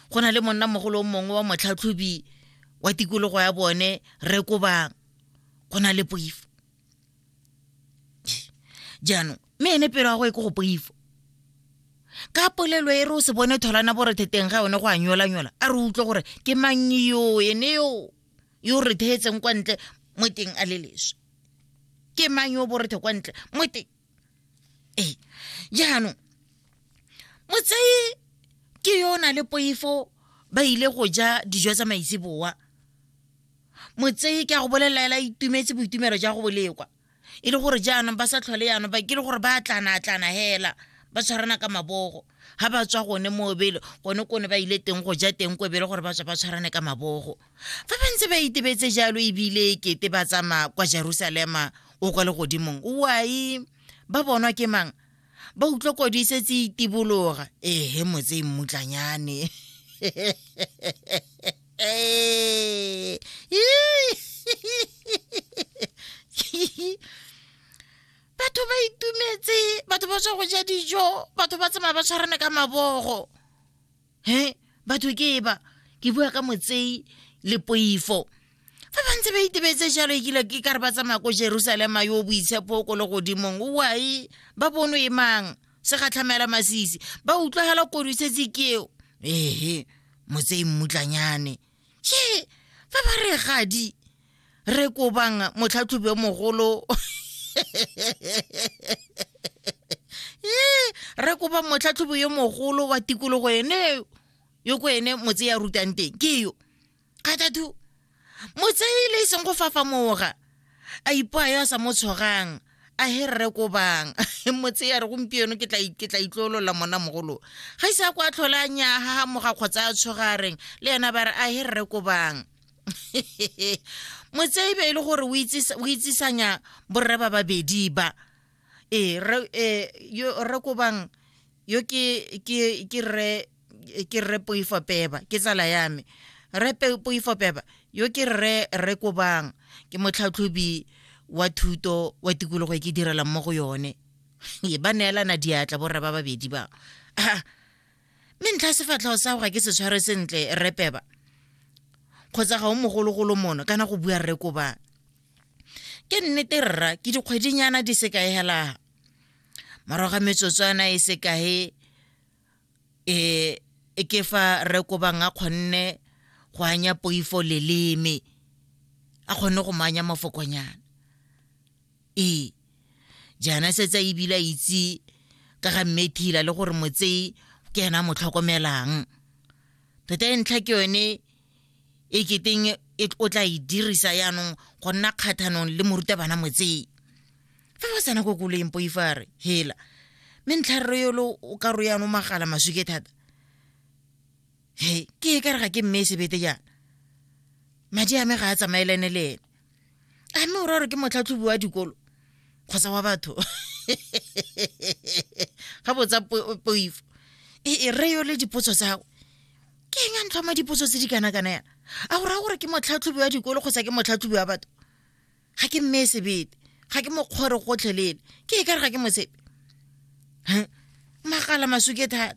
go na le monnamogolo o mongwe wa motlhatlhobi wa tikologo ya bone re koba go na le poifo jaanong mme ene pelo ya go e ko go poifo ka polelo e re o se bone tholana boretheteng ga yone go a nyolanyola a re utlwe gore ke mang yo ene yo yo re theetseng kwa ntle mo teng a le leswe ke mang yo borethe kwa ntle mo teng ee jaanong motsei ke yo o na le poifo ba ile go ja dijo tsa maitseboa motsei ke a go bolelaela itumetse boitumelo ja go bolekwa e le gore jaanong ba sa tlhole yanong ba ke le gore ba tlana-tlana hela ba tshwarana ka mabogo ga ba tswa gone mo bele gone kone ba ile teng go ja teng ko bele gore ba tswa ba tshwarane ka mabogo Fa ba ntse ba itebetse jalo ebile kete ba tsamaya kwa Jerusalema o kwa legodimong, wai ba bonwa ke mang? Ba utlwa kwadi setse itibologa. Ehe motse e mmutlanyane. batho ba itumetse batho ba tswa go ja dijo batho ba tsamaya ba tshwarane ka mabogo he batho ke e ba ke bua ka motsei le poifo fa ba ntse ba itebetse jalo ekile ke ka re ba tsamaya ko jerusalema yo boitshepo ko le godimong oai ba bono e mang se gatlhamela masisi ba utlwagela kodisetse keo ehe motsei mmutlanyane ke fa ba re gadi re kobang motlhatlhobi o mogolo re kopa motlhatlhobi yo mogolo wa tikologo ene yo ko ene motse ya rutang teng ke yo kgathatho motse e le e seng go fafamoga a ipoa yo a sa mo tshwarang a he rre ko bang motse ya re gompieno ke tla itlolola mona mogolo ga ise a kwa tlhole a nyaga moga kgotsa a tshoga a reng le yena ba re a he rre ko bang motse e be e le gore o itsisanya borre ba babedi ba ee rre e, ko bang yo ke rre ke rre poifo peba ke tsala ya me rre poifo peba yo ke rre rre kobang ke motlhatlhobi wa thuto wa tikologo e ke direlang mo go yone e ba neelana diatla borra ba babedi ba ah, mme ntlha sefatlhao sa go ga ke se tshware sentle rre peba kgotsa ga o mogologolo mono kana go bua rre kobang ke nnete rra ke dikgwedinyana di sekaegelaga morago ga metsotswana e sekae e e ke fa re kobang a kgonne go anya poifo leleme a kgonne go mo anya mafokonyana ee jaana setse a ebile a itse ka ga mmethila le gore motsei ke ena a mo tlhokomelang tota e ntlha ke yone e keteng e, o tla e dirisa yaanong go nna kgathanong le morutabana motseng fa ba tsena ko koloeng poifare hela mme ntlharero yolo o ka ro yaanong magala masuke thata he ke e ka re ga ke mme e sebete jaana madi a me ga a tsamaelane le ene a mme o ra gore ke motlhatlhobi wa dikolo kgotsa wa batho ga botsa poifo e, e re yo le dipotso tsa gago ke eng a ntlhoma dipotso tse di kana-kana yana a o raya gore ke motlhatlhobi wa dikolo kgotsa ke motlhatlhobi wa batho ga ke mme sebete ga ke mokgore gotlhelele ke e ka re ga ke mosepe magala masuke thata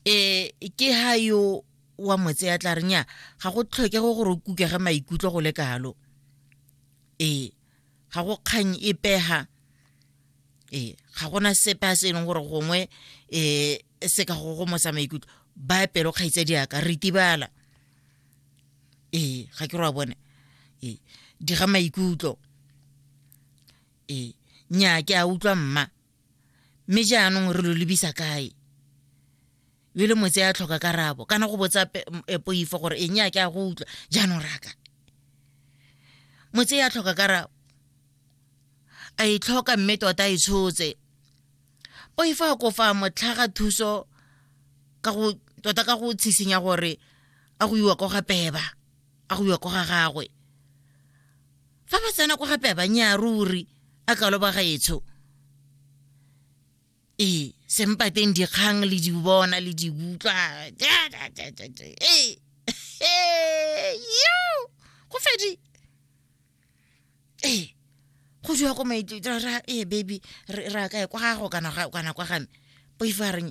e ke ha yo wa motse ya tla renya ga go tlhokego gore o kukege maikutlo go le kalo ee ga go kgang e pega ee ga gona sepe a se e leng gore gongwe um se ka go gomosa maikutlo ba pelo kgaitse diaka re tibala ee ga ke roa bone ee diga maikutlo ee nya ke a utlwa mma mme jaanong re lo lebisa kae yo le motse ya tlhoka karabo kana go botsa e, poifo gore eng ya ke a go utlwa jaanong raka motse ya tlhoka karabo a e tlhoka mme tota e tshotse poifo a kofa motlhaga thuso ka go tota ka go tshisinya gore a go iwa ko ga peba a go ya ko ga gagwe fa ba tsena ko gape a ba nyaa ruri a kalo ba gaetsho ee sempa teng dikgang le di bona le di utlwa go fedi ee go jwa ko maitira ee baby ra kae kwa gago kana kwa game poifo a reng